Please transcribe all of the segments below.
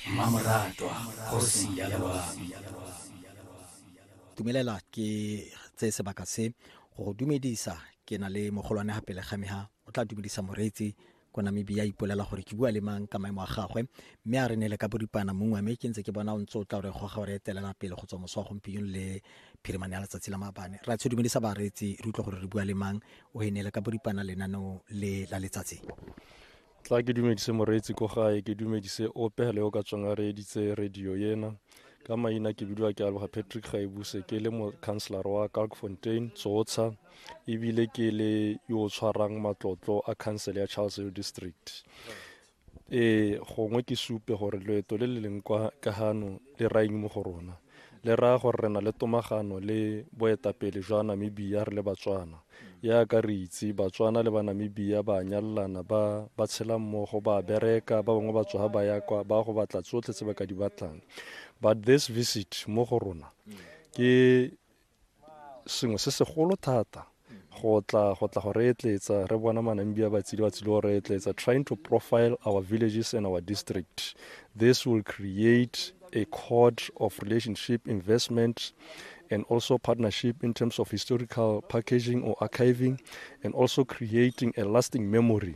mmamoratwa kgosi ya loabi dumelela ke tse sebaka se go go dumedisa ke na le mogolwane ga pele ga me ga o tla dumedisa moreetsi ko namibia a ipolela gore ke bua le mang ka maemo a gagwe mme a re ne le ka boripana mongwe mme ke ntse ke bona o ntse o tla gore goga gore etelela pele go tswa moso wa gompieno le phirimane ya letsatsi la mabane ra tsho dumedisa bareetsi re utlwa gore re bua le mang o e ne le ka boripana lenaneo le la letsatsi tla ke dumedise moreetsi ko gae ke dumedise ope le o ka tswang a reeditse radio ena ka maina ke bidiwa ke aloga patrick gaebuse ke le mocounselor wa kalkfontein tsotsha ebile ke le yo o tshwarang matlotlo a council ya charles hill district ee gongwe ke supe gore loeto le le leng kwa ka gano le raeng mo go rona le raya gore re na le tomagano le boetapele jwa Namibia re le Batswana. Yaaka re itse, Batswana le Banamibia ba a nyalelana, ba, ba tshela mmogo, ba a bereka, ba bangwe ba tsoga ba ya kwa, ba go batla tsotlhe tse ba ka di batlang. But this visit mo go rona, ke sengwe se segolo thata go tla go tla go re etletsa re bona manambi a batsile batsile go re etletsa trying to profile our villages and our district this will create a code of relationship investment and also partnership in terms of historical packaging or archiving and also creating a lasting memory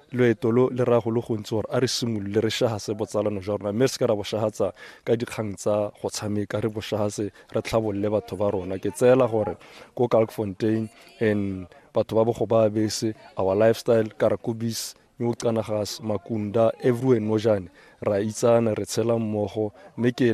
Loeto lo le raya go le gontsi gore a re simolole re shahase botsalano jwa rona mme re seke ra boshahatsa ka dikgang tsa go tshameka re boshahase re tlhabolole batho ba rona ke tseela gore ko Kalkfontein and batho ba bogo ba bese our lifestyle karakubis new canagas makunda everywhere nojane ra itsana re tshela mmogo mme ke